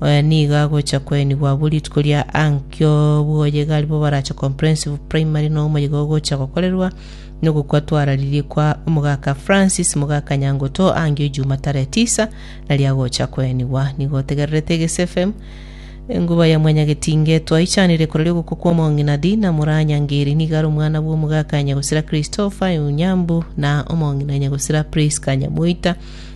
Oyo nigo agocha koenigwa abwo rituko ria ankio bw'oyega aribo barache Comprehensive Primary na omoyega ogocha gokorerwa nogokwa twararirie kwa omogaka Francis mogaka Nyangoto angio ejuma tarehe tisa naria agocha koenigwa. Nigo otegererete Egesi FM enguba ya mwanyagetinge twaichanire korori ogokwa kwa omong'ina Dina Muranyangeri nigo are omwana bw'omogaka Nyagosira Christopher Onyambu na omong'ina Nyagosira Prisca Nyamoita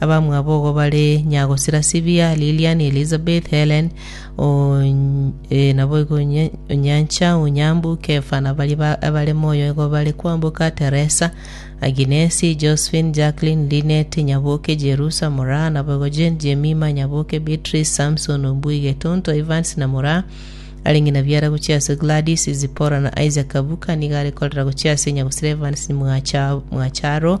Abamwabo ogo bare Nyagosira-Sibia, Lilian, Elizabeth, Helen, Ony- eh, naboigo Onye- Onyancha, Onyambu, Kefa, na baria ba- abare moyo igo bare kwamboka, Teresa, Aginesi, Josephine, Jacqueline, Linet, Nyaboke, Jerusa, Moraa, naboigo Jane, Jemima, Nyaboke, Beatrice, Samson, Ombui, Getonto, Evans, na Moraa, arenge na biara gochia ase Gladys, Zipora, na Isaac Kabuka, nigo arekorera gochia ase Nyagosira Evans Mwacha- Mwacharo,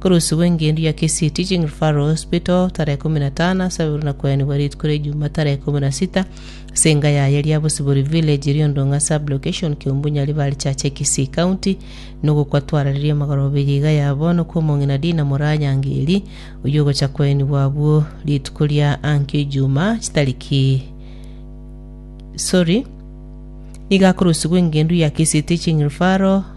Korosibwa engencho ya Kisii Teaching Referral Hospital tarehe ikomi na tano ase ababirwe na koenigwa rituko ria Ijumaa tarehe ikomi na sita ase enga yaye Liabosibori Village, Riondong'a Sub-Location, Kiombunyari Valley Church e Kisii County. Nogokwa twarareria amagoro abere iga ya bono kwa omong'ina Dina Moranyangeri oyio ogocha koenigwa abwo rituko ria ankio Ijumaa chitariki sorry, nigo akorosibwa engencho ya Kisii Teaching Referral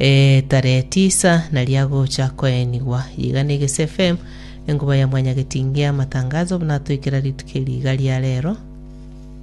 Ee, tarehe tisa nario agocha koenigwa. Yiga ne Eges FM, enkuba ya Mwanyagetinge y'amatangazo, buna atoikera rituko eri iga ria rero.